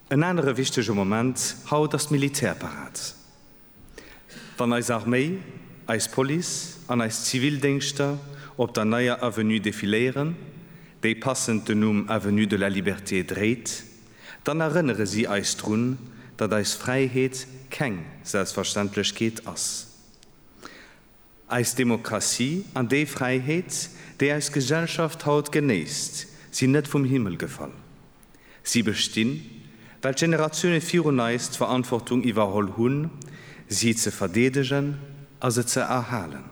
En anere wichtege Moment haut ass d'Militärparad. Wann eis Arméi, eis Police an eis Zivildéngschter op der neier Avenue defiléieren, déi passend den Numm Avenue de la Liberté dréit, dann erënnere si eis drun, datt eis Fräiheet keng Selbstverständlechkeet ass. Eis Demokratie an déi Fräiheet, déi eis Gesellschaft haut genéisst, sinn net vum Himmel gefall. Si bestinn, well d'Generatioune virun eis d'Verantwortung iwwerholl hunn, si ze verdeedegen a se ze erhalen.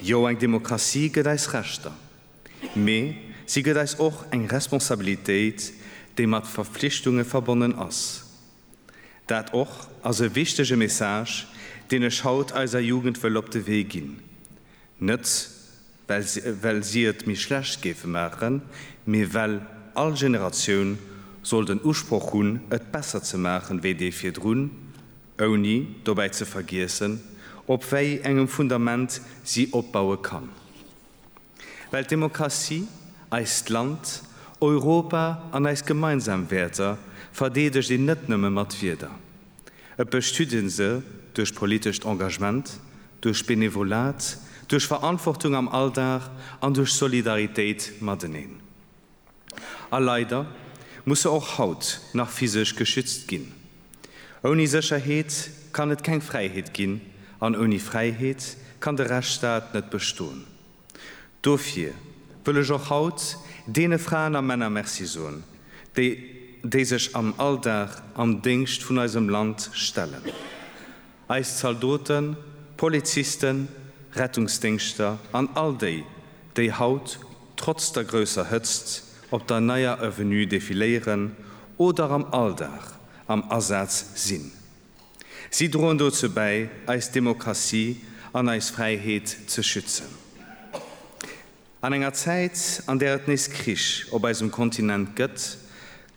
Jo, eng Demokratie gëtt eis Rechter, mee si gëtt eis och eng Responsabilitéit, déi mat Verpflichtunge verbonnen ass. Dat och ass e wichtege Message, deen ech haut eiser Jugend wëll op de Wee ginn. Net well si et méi schlecht géife maachen, mee well all Generatioun soll den Usproch hunn, et besser ze maachen, wéi déi virdrun, ouni dobäi ze vergiessen, op wéi engem Fundament si opbaue kann. Well d'Demokratie, eist Land, Europa an eis gemeinsam Wäerter verdeedegt een net nëmme mat Wierder. Et bestüt ee se duerch politescht Engagement, duerch Benevolat, duerch Verantwortung am Alldag an duerch Solidaritéit mateneen. A leider muss se och haut nach physesch geschützt ginn. Ouni Sécherheet kann et keng Fräiheet ginn an ouni Fräiheet kann de Rechtsstaat net bestoen. Dofir wëll ech och haut deene Fraen a Männer Merci soen, déi déi sech am Alldag am Déngscht vun eisem Land stellen. Eis Zaldoten, Polizisten, Rettungsdéngschter an all déi, déi haut trotz der grousser Hëtzt op der Neier Avenue defiléieren oder am Alldag am Asaz sinn. Si droen dozou bäi, eis Demokratie an eis Fräiheet ze schützen. An enger Zäit, an där et nees Krich op eisem Kontinent gëtt,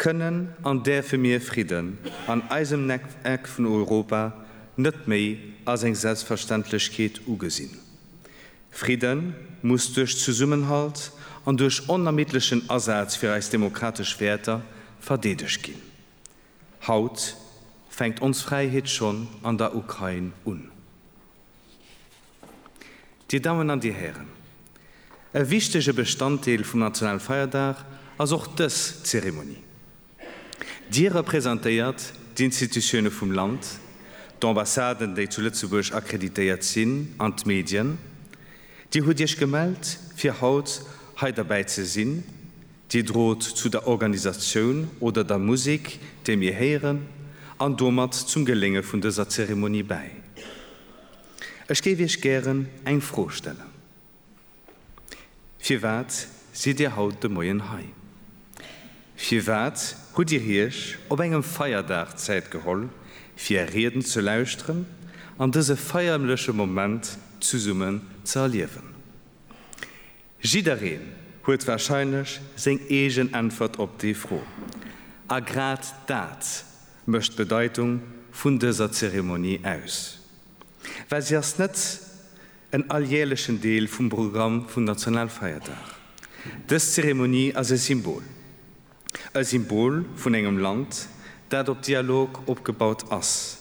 kënnen an däerfe mir Fridden an eisem Eck vun Europa net méi als eng Selbstverständlechkeet ugesinn. Fridde muss duerch Zesummenhalt an duerch onermiddlechen Asaz fir eis demokratesch Wäerter verdeedegt ginn. Haut fänkt ons Fräiheet schonn an der Ukrain un. Dir Dammen an Dir Hären, e wichtege Bestanddeel vum nationale Feierdag ass och dës Zeremonie. Dir representéiert d'Institutione vum Land, d'Ambassaden, déi zu Lëtzebuerg akkreditéiert sinn, an d'Medien. Dir hutt Iech gemellt, fir haut hei derbäi ze sinn, Dir drot zu der Organisatioun oder der Musik, déi mir héieren, an domat zum Gelénge vun dëser Zeremonie bäi. Ech géif Iech gären eng Fro stellen. Firwat sidd Dir haut de Moien hei? Firwat hutt Dir Iech op engem Feierdag Zäit geholl, fir är Rieden ze lauschteren an dëse feierleche Moment zesummen ze erliewen? Jiddereen huet warscheinlech seng eegen Äntwert op déi Fro. A grad dat mécht d'Bedeitung vun dëser Zeremonie aus, well si ass net en alljährlechen Deel vum Programm vum Nationalfeierdag. Dës Zeremonie ass e Symbol. e Symbol vun engem Land, dat op Dialog opgebaut ass,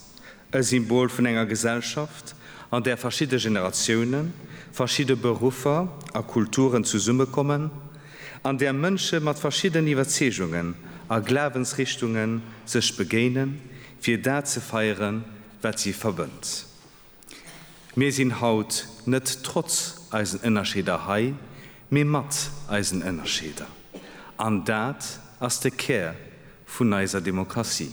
e Symbol vun enger Gesellschaft, an där verschidde Generatiounen, verschidde Beruffer a Kulturen zesummekommen, an där Mënsche mat verschiddenen Iwwerzeegungen a Glawensrichtungen sech begéinen, fir dat ze feieren, wat si verbënnt. Mir sinn haut net trotz eisen Ënnerscheeder hei, mee mat eisen Ënnerscheeder. An dat ass de Kär vun eiser Demokratie.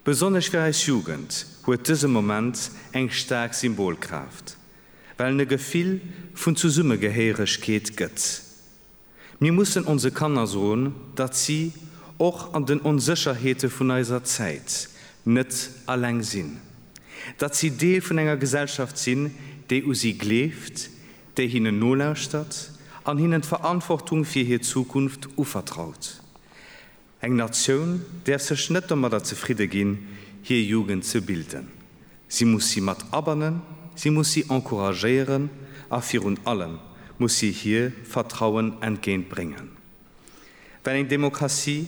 Besonnesch fir eis Jugend huet dëse Moment eng staark Symbolkraaft, well en e Gefill vun Zesummegehéieregkeet gëtt, Mir mussen onse Kanner soen, datt si och an den Onsécherheete vun eiser Zäit net alleng sinn, datt si Deel vun enger Gesellschaft sinn, déi u si gleeft, déi hinnen nolauschtert an hinnen d'Verantwortung fir hir Zukunft uvertraut. Eng Natioun däerf sech net domadder zefridde ginn, hir Jugend ze bilden. Si muss si mat abannen, si muss si encouragéieren a virun allem muss si hir Vertrauen entgéint bréngen. Well eng Demokratie,